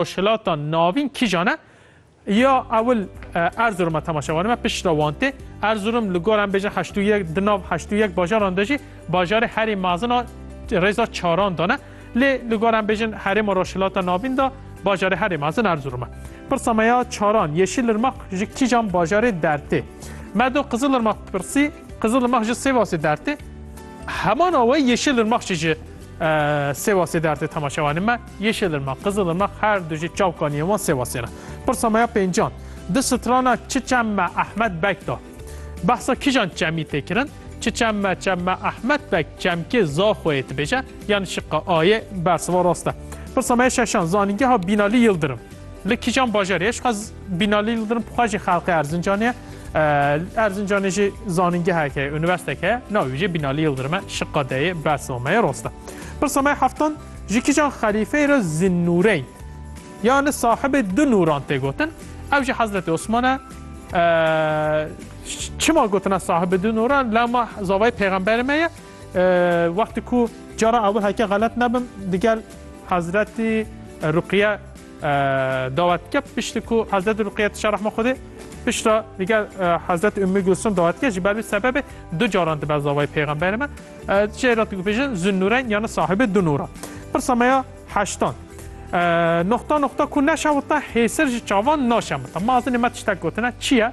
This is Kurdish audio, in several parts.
Rojhilata Navîn kîjan e? Ya ewil Erzurum e temaşe were me pişt re wan tê. Erzurum li gor em bêjin heşt û yek di nav heşt û yek bajaran de jî bajarê herî mezin a rêza çaran de ne. Lê li gor em bêjin Herêma Rojhilata Navîn de bajarê herî mezin Erzurum e. Pirsa me ya çaran Yeşilirmaq ji kîjan bajarê dertê? Me do Qizilirmaq pirsî, Qizilirmaq ji Sêwasê dertê. Heman awe Yeşilirmaq jî ji Sêwasê dertê temaşewanê me, Yeşilirmak, Qizilirmak her du jî çavkan yên wan Sêwasê re. Pirsa me ya pêncan, di strana çi çem me Ehmed Beg de? Behsa kijan çemî tê kirin? Çi çem me çem me Ehmed Beg çemkê Zaxoyê dibêje, yanî şiqa A yê bersiva rast e. Pirsa me ya şeşan, Zanîngeha Bînalî Yildirim. Li kîjan bajarê ye? Ji xwe Bînalî Yildirim bi xwe jî xelqê Erzincanê ye. Erzincanê jî zanîngehek heye, unîverstek heye. Navê wî jî Bînalî Yildirim e. Şiqa deyê bersa me ye rast e. Pirsa me heftan ji kîjan xelîfeyê re Zinnûreyn yani sahibê du nûran tê gotin. Ew jî Hezretê Osman e. Çima gotina sahibê du nûran? Lama zavayê pêxemberê me ye. Wextê ku cara awil heke xelet nebim digel Hezretî Ruqiye dawet dike piştî ku Hezretî Ruqiye tişa rehma Xwedê pişta digel Hezretî Ummî Gulsum dawet dike ji ber vî sebebê du caran dibe zavayê pêxemberê me jê re dibêjin Zinnûreyn yanî sahibê du nûran. Pirsa me ya heştan. Noxta noxta ku neşewite hêsir ji çavan naşemite. Mazinê me tiştek gotine çi ye?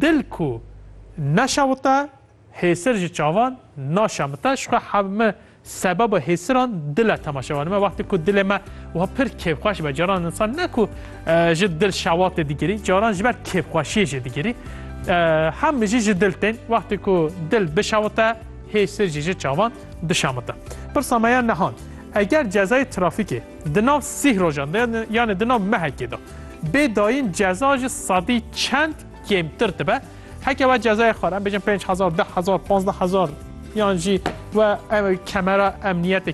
Dil ku neşewite Hêsir ji çavan naşemite, ji xwe hev me sebeba hêsiran dile temaşevanê me. Wextê ku dilê me wiha pir kêfxweş be, caran insan ne ku ji dil şewatê digirî, caran ji ber kêfxweşiyê jî digirî. Hem mijî ji dil tên, wextê ku dil bişewite, hêsir jî ji çavan dişemite. Pirsa me ya nihan, eger cezayê trafîkê di nav sih rojan de yanê di nav mehekê de bê dayîn ceza ji sedî çend kêmtir dibe? Heke we cezayê xwe re bêjin pênc hezar, deh hezar, pazdeh hezar yan jî we kemera emniyetê